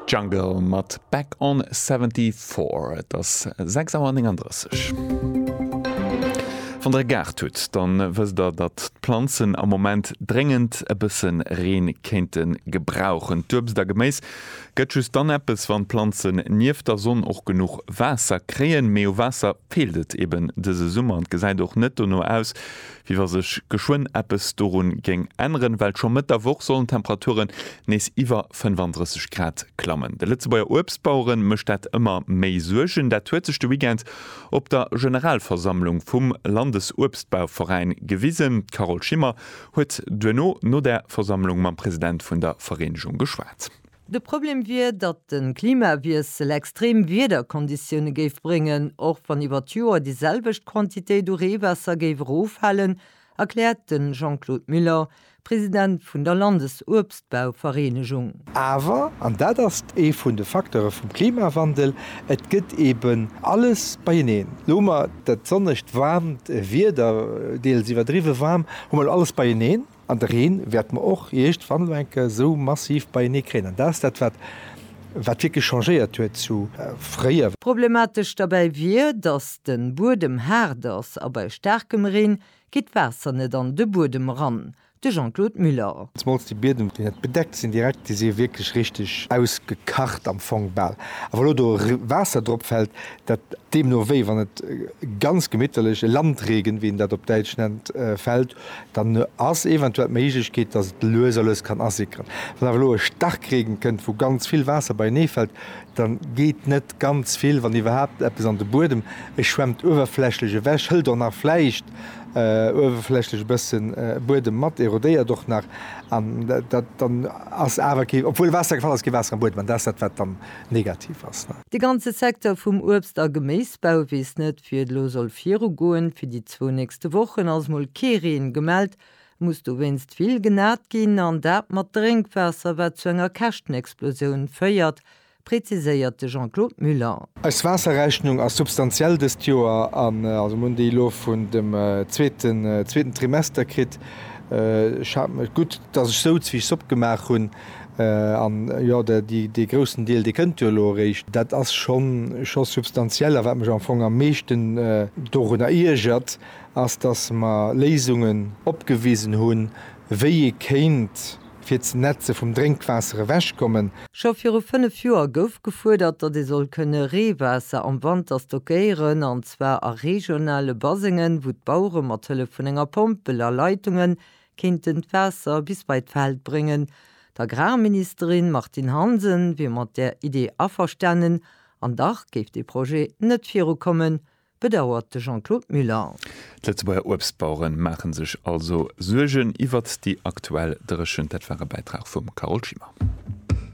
Jungle mat Back on 74. Et ass 6 Auer 39. Wann der e Gaart hutt, dann wësst der, datt d'Planzen am Moment dréngend e bësse Reen kéinte gebrauchen. D'Uebst a Geméis gëtt just dann eppes, wann d'Planzen nieft der Sonn och genuch Waasser kréien. Mee u Waasser feelt et eben dëse Summer an et gesäit och net dono aus, wéi wa sech geschwënn eppes dorun géing änneren, well scho Mëtt der Woch sollen d'Temperaturen nees iwwer 35 Grad klammen. De Lëtzebuerger Uebstbauere mécht dat ëmmer méi Suergen. Dat huet sech de Weekend op der Generalversammlung vum Landesuebstbauveräin gewisen. D'Carole Schimmer huet duerno no der Versammlung mam President vun der Vereenegung geschwat. De Problem wier, datt de Klimawiessel extrem Wiederkonditioune géif bréngen, och wann iwwer d'Joer déi selwecht Quantitéit u Reewaasser géif eroffalen, erkläert de Jean-Claude Muller, President vun der Landesuebstbauvereenegung. Awer, an dat ass ee vun de Facteure vum Klimawandel, et gëtt eeben alles beieneen. Elo hu mer dat sonnegt, waarmt Wieder, deels iwwerdriwwe waarm, hu mer elo alles beieneen. An de Reen wäerte mer och eescht wann elo eng Kéier esou massiv beienee kréien. An dat ass dat, wat wierklech changéiert huet zu fréier. Problematesch derbäi wier, datt de Buedem haart ass a bei staarkem Reen geet d'Waasser net an de Buedem eran. De Jean-Claude Muller. Zemools déi Biedem, déi net bedeckt sinn direkt, déi si wierklech richteg ausgekacht am Fong bal. A wa elo do Waasser drop fält, dat deemno wéi wann et ganz gemitterlech e Landregen, wéi een dat op Däitsch nennt, fält, Dann ass eventuell d'Méiglechkeet, dass et lues a lues kann asickeren. Wann awer elo e Starkregen kënnt, wou ganz vill Waasser beienee fält, da geet net ganz vill, wann iwwerhaapt eppes, an de Buedem. E schwemmt uewerflächlech ewech, hëlt och nach vläicht uewerflächlech e bësse Buedem mat, erodéiert och nach. An dat dann ass awer kee, obwuel Waasser gefall ass, kee Waasser am Buedem. An dat ass dat, wat dann negativ ass. De ganze Secteur vum Uebst a Geméisbau weess net, wéi et elo soll virugoen. Fir déi zwou nächste Wochen ass mol kee Reen gemellt. Et muss dowéinst vill genat ginn, an dat mat Drénkwaasser, wat zu enger Käschtenexplosioun féiert, präziséiert de Jean-Claude Muller. Eis Waasserrechnung ass substantiell dëst Joer, an also mir hunn déi elo vun dem zweeten Trimester kritt. Ech hat gutt, datt ech souz, wéi ech Sopp gemaach hunn. An jo, dee groussen Deel, dee kënnt jo elo eréischt. Dat ass scho substantiell. A wat mech am Fong am meeschten dorunner iergert, ass, datt mer Léisungen opgewisen hunn, wéi ee kéint fir d'Netze vum Drénkwaasser ewechkommen. Scho viru fënnef Joer gouf gefuerdert, datt ee soll kënne Reewaasser am Wanter stockéieren, an zwar a regionale Basengen, wou d'Bauere mat Hëllef vun enger Pompel a Leitungen kéinten d'Waasser bis bei d'Feld bréngen. D'Agrarministerin Martine Hansen wier mat där Idee averstanen, an dach géif dee Projet net virukommen, bedauert de Jean-Claude Muller. D'Lëtzebuerger Uebstbauere maache sech also Suergen iwwert déi aktuell Dréchent. Dat war e Bäitrag vum Carole Schimmer.